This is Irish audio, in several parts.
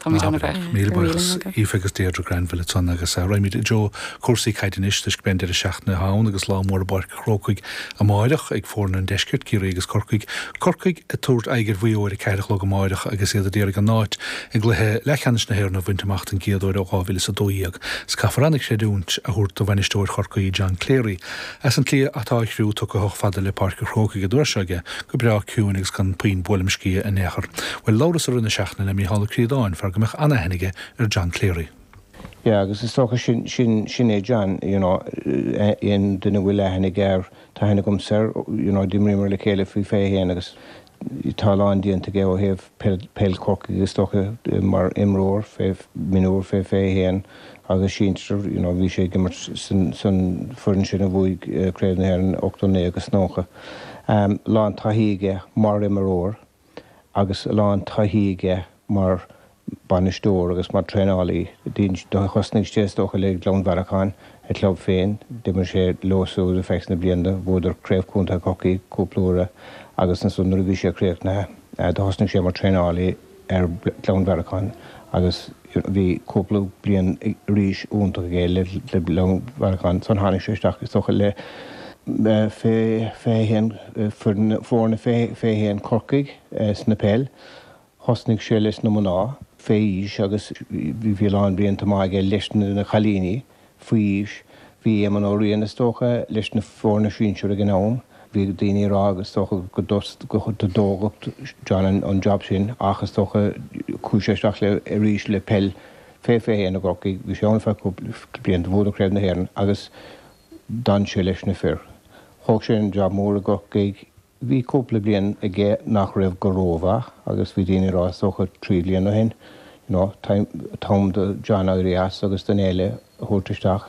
Tá muid an-bhuíoch. Míle buíochas Aoife agus Deirdre Granville a Tonna agus raghaimid i dtreo cúrsaí caide anois toisc go mbeidh an deireadh seachtaine ann agus lá mór i bPáirc an Chrócaigh amáireach ag foirne an Deiscirt, Ciarraí agus Corcaigh. Corcaigh ag tabhairt aghaidh ar Mhaigh Eo ar a ceathair a chlog amáireach agus iad a d'iarraidh an áit i gcluiche leathcheannais na hÉireann a bhaint amach don gcéad uair ó 2012. Is caithfear an-chreidiúint a thabhairt do bhainisteoir Chorcaí John Cleary As an slí atá a chriú tugtha chomh fada le Páirc a Chrócaigh an uair seo aige go breá ciúin agus gan puinn buaileam sciath in aon chor. Bhuel labhras i rith na seachtaine le Mícheál Ó Críodáin, fear go mbeadh an-aithne aige ar John Cleary. Yeah agus is dócha sin, sin, sin é John you know, aon duine a bhfuil aithne aige air, tá aithne agamsa air, you know d'imríomar le chéile faoi 21 agus Tá a lán déanta aige ó thaobh peil Chorcaigh is dócha mar imreoir mionúr fé 21 agus sinsir, you know bhí sé ag imirt san foireann sin a bhuaigh Craobh na hÉireann 89 agus 90. Lán taithí aige mar imreoir agus a lán taithí aige mar bainisteoir agus mar traenálaí. Thosnaigh sé, is dócha, le Gleann Bhearracháin, a chlub féin. D'imir sé leo suas ar feadh sna blianta. Bhuadar Craobh Contae Chorcaí cúpla uair agus ansan nuair a bhí sé críochnaithe, thosnaigh sé mar traenálaí ar Gleann Bhearracháin agus bhí cúpla bliain arís iontach aige le Gleann Bhearracháin. Ansan tháinig sé isteach, is dócha, le fiche a haon foirne fiche a haon Corcaigh sna peil. Thosnaigh sé leis na mná fé aois agus bhí a lán blianta maith aige leis na cailíní faoi aois. Bhí Éamonn Ó Riain is dócha leis na foirne sinsir ag an am. Bhí daoine ag rá is dócha go dtógfadh John an job sin ach is dócha chuaigh sé isteach le arís le peil fé 21 i gCorcaigh. Bhí sé ann ar feadh cúpla bliain. Bhuadar Craobh na hÉireann agus d'fhan sé leis na fir. Thóg sé an job mór i gCorcaigh. Bhí cúpla bliain aige nach raibh go rómhaith agus bhí daoine ag rá, is dócha trí bhliain ó shin, you know, t-am do John éirí as agus duine eile a thabhairt isteach.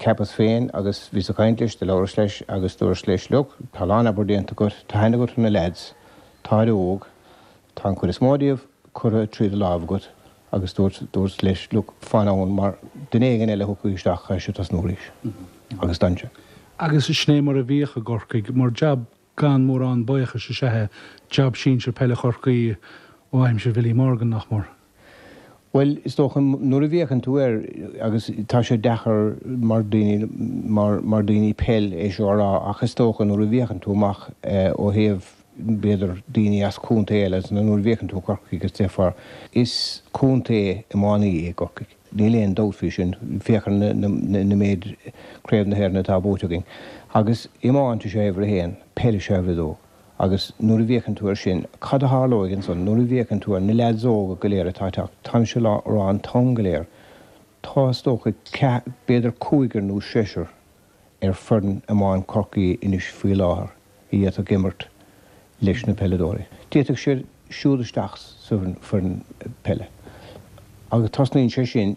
Cheapas féin agus bhíos ag caint leis, do labhras leis agus dúras leis, look, tá a lán obair déanta agat, tá aithne agat ar na lads, táid óg, Tá an chuid is mó díobh curtha tríd an láimh agat agus dúirt, dúirt leis, look, fan ann mar duine éigin eile a thiocfaidh isteach, caithfidh sé tosnú arís. Agus d'fhan sé. Agus sin é mar a bhíodh i gCorcaigh, mar jab gan mórán baochais is ea é, jab sinsir peile Chorcaí ó aimsir Bhilly Morgan, nach mór. Bhuel, is dócha nuair a bhféachann tú ar, agus tá sé deacair mar daoine, mar, mar daoine peil é seo a rá ach is dócha nuair a bhféachann tú amach ó thaobh b'fhéidir daoine as contae eile nó nuair a bhféachann tú Corcaigh agus déarfá is contae iománaí é Corcaigh. Níl aon dabht faoi sin. Féach ar na, na, na méid Craobh na hÉireann atá buaite againn. Agus iomáint is ea uimhir a haon, peil is ea uimhir a dó. Agus nuair a bhféachann tú air sin, cad a tharlóidh ansan? Nuair a bhféachann tú ar na leaids óga go léir atá ag teacht, táimse á rá an t-am go léir, tá, is dócha, ceath, b'fhéidir cúigear nó seisear ar foireann iomána Chorcaí anois faoi láthair a d'fhéadfadh ag imirt leis na peileadóirí. D'fhéadfadh siad siúl isteach sa foireann peile agus tosnaíonn sé sin